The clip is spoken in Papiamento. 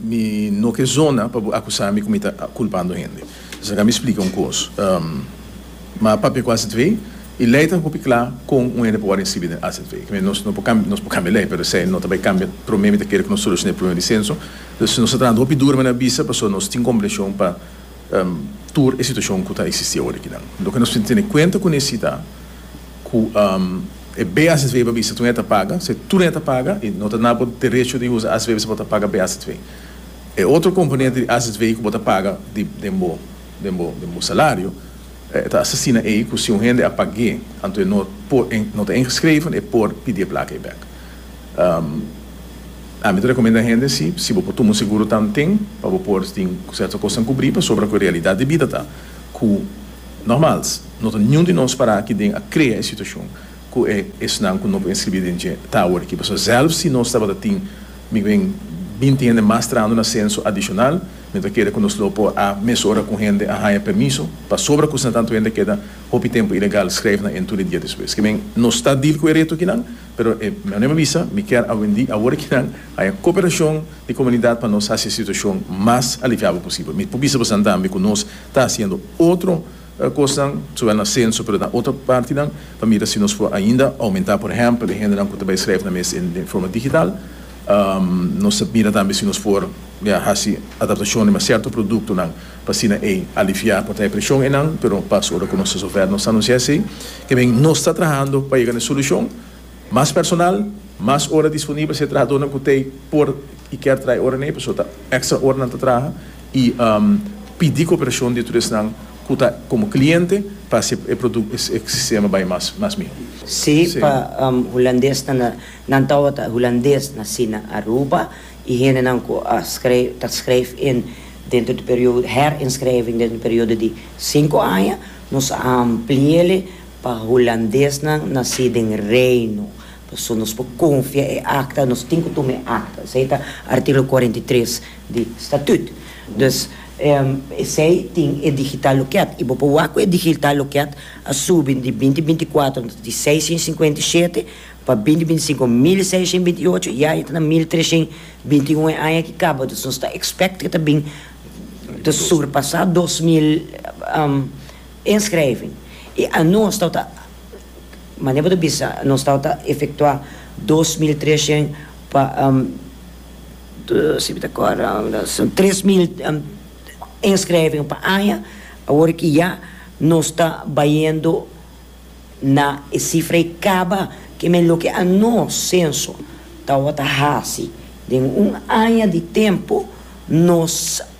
Mi no ke zona pa bo akusá mi ku mi ta kulpando hende. Esaki a mi splika un kos. Ma papia ku AZV i lei ta hopi kla kon un hende por wòrdu inskribí den AZV. Ke men nos por kambia lei, pero esei no ta bai kambia. Promé mi ta kere ku nos solushoná e problema di senso. Pues nos ta trabando hopi duru, mi a bisa, pasobra nos tin komprenshon pa tur e situashon ku ta eksistí aworakinan. Loke nos tin tene kuenta kuné si ta. ku e BACW a bisa tur e ta paga, si tur e ta paga i no ta na bo derecho di usa ACW si bo ta paga BACW. E otro komponente di ACW ku bo ta paga di den bo den bo den bo salario e ta asina ei ku si un hende a pag'é anto e no por e no ta ingeschreven e por pidi e plaka ei bèk. Ami ta rekomenda hende si si bo por tuma un seguro tanten pa bo por tin serto kosnan kubrí pasobra ku e realidat di bida ta ku Normals, no ta niun di nos para aki den a krea e situashon ku e esnan ku no por inskribí den dje ta awor aki, pasobra sèlf si nos tabata tin mikben binti hende mas trahando na senso adishonal, mi no ta kere ku nos lo por a mesora ku hende a haña permiso pasobra ku esnan tantu hende a keda hopi tempu ilegal, skreef nan en tur e dia despues. Kiben nos ta deal ku e reto akinan, pero e meneer mi bisa mi kier awendi awor aki nan haña koperashon di komunidat pa nos hasi e situashon mas aliviabo posibel. Mi por bisa bosan tambe ku nos Ta hasiendo otro kosnan, zowel na senso pero na otro partinan, pa mira si nos por ainda oumentá, por ehèmpel, e hendenan ku ta bai skrèf nan mes den forma digital. Nos ta mira tambe si nos por hasi adaptashonnan riba sierto produktonan pa asina ei aliviá por traha e preshon ei nan, pero pas ora ku nos ta zover nos ta anunciá esei. Ke men, nos ta trahando pa yega na e solushon. Mas personal, mas ora disponibel si e trahadónan ku t'ei por i kèr traha ora n'ei pasobra ta èkstra oranan ta traha i pidi koperashon di tur esnan ku ta komo kliente pa hasi e produkt e sistema bai mas mihó. Sí, pa hulandesnan, nan tabata hulandes nasí na Aruba i hendenan ku a skreif, ta skreif in dentro di periodo, herinskrijving dentro di periodo di sinku aña, nos a ampli'é. Pa hulandesnan nací den Reino, pasobra nos por confia e acta, nos tin cu tuma e acta. Esey ta articulo cuarenta y tres di Statut. Dus, esey tin e digital loket y bo por wak cu e digital loket a subi di binti binti cuatro di seishen cincuenta y shete pa binti binti cinco mil y seishen binti y ocho. Ya e ta na mil treshen binti un e aña ki caba. Dus nos ta expect cu ta bin ta surpasa dos mil. Inschrijving i anons tawata a Manera bo ta bisa nos tawata a efektuá dos mil treshent pa si bo ta kòrda tres mil inschrijving pa aña awor ki ya nos ta bayendo na e sifra ei kaba ke men loke anons senso tawata hasi den un aña di tempu nos